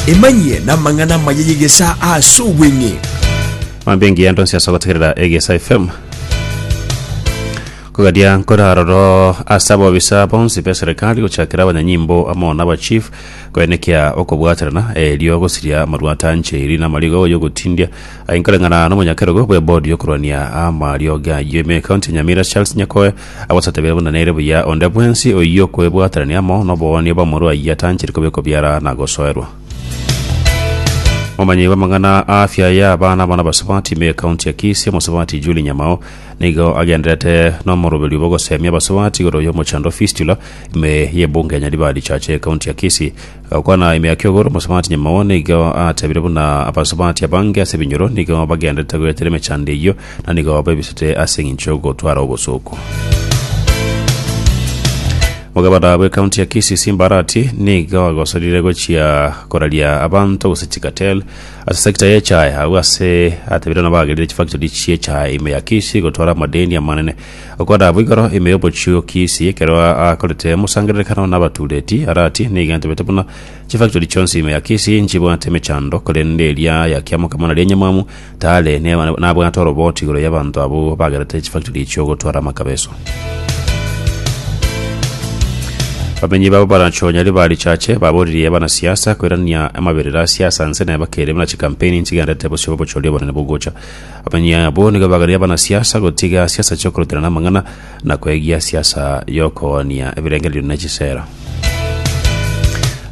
Emanyie namang'ana amaya y'egesaa ase obweng'e. Mambia engiya ndonsi ase gotegerera egesa fm kogadia nkoraroro ase abobisa bonsi be serikali gochakera abanyanyimbo amo na abachief koenekia okobwaterana erio gosiria amarwata ancheri na amarigo y'ogotindia aye nkoreng'ana na omonyakerogo bw'ebodi y'okorwania amariogi ayio ime ekaunti ya nyamira charles nyakoe Agosatebere buna nere buya onde bwensi oyio okwebwaterania amo noboonio bw'omorua oyio atanchire kobe kobiara na gosoerwa. Momanyi bw'amang'ana a afya ya abana amo nabasubati me county ya Kisii omosubati Julie Nyamao nigo agendererete nomoroberio bw'ogosemia abasubati igoro y'omochando fistula ime y'ebunge ya Nyaribari Church ye county ya Kisii Gokwana ime ya kiogoro, omosubati nyamao nigo atebire buna abasubati abange ase ebinyoro nigo bagenderete goetera emechando eyio, na nigo baebisete ase engencho y'ogotwara obosooku. Omogabana bw'ekaunti ya Kisii Simba Arati nigo agosorire gochia koraria abanto gose chikatel ase sekta ya echae agwo ase atebire nabagerire chifactori chi'echae ime ya Kisii gotwara amadeni amanene Okwana boigoro ime y'obochioki isi ekero akorete mosangererekano nabatuureti, arati, Nigo ntebete buna chifactori chionsi ime ya Kisii nchibwate emechando, korende eria ya Kiamokama naria enyamwamu, tare nabwate oroboti igoro y'abanto abwo bagerete chifactori echio gotwara amakabeso. Bamenyi babo barachonyari ba richache baboririe abanasiasa koirania amaberero a siasa nse naye bakeire buna chikampeini nchigenderete bosio bw'obochori obonene bogocha Abanyia abo nigo baganeire abanasiasa gotiga siasa chi'okoroterana amang'ana na kwegia siasa y'okoonia ebirengererio ne chisera.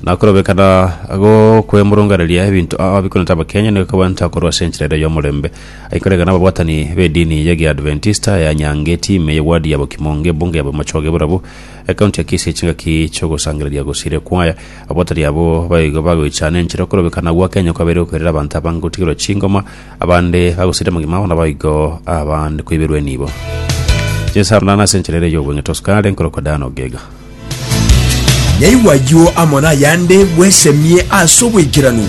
Na okorobekana gokwemurunganeria ebinto ao bikonete Abakenya nigo kobanta korwa ase enchera ere y'omorembe. Aikorega n'ababwatani b'edini y'Egeadventista ya Nyangeti ime y'ewadi ya Bokimo ng'ebunge ya Bomachoge Borabu, ekaunti ya Kisii chingaki chi'ogosangereria gosiire kwaya. Ababwatani abwo baigo bagoichana enchera okorobekana gwa Kenya kwabeire gokoirera abanto abange gotigerwa chingoma, Abande bagosirire mogima ao naboigo abande koiberwa enibo. Jesu arondana ase enchera ere y'obweeng'ete osukare nkorokwa Dana Ogega. Naigwa ayio amo nayande bwesemie ase obwaikeranu.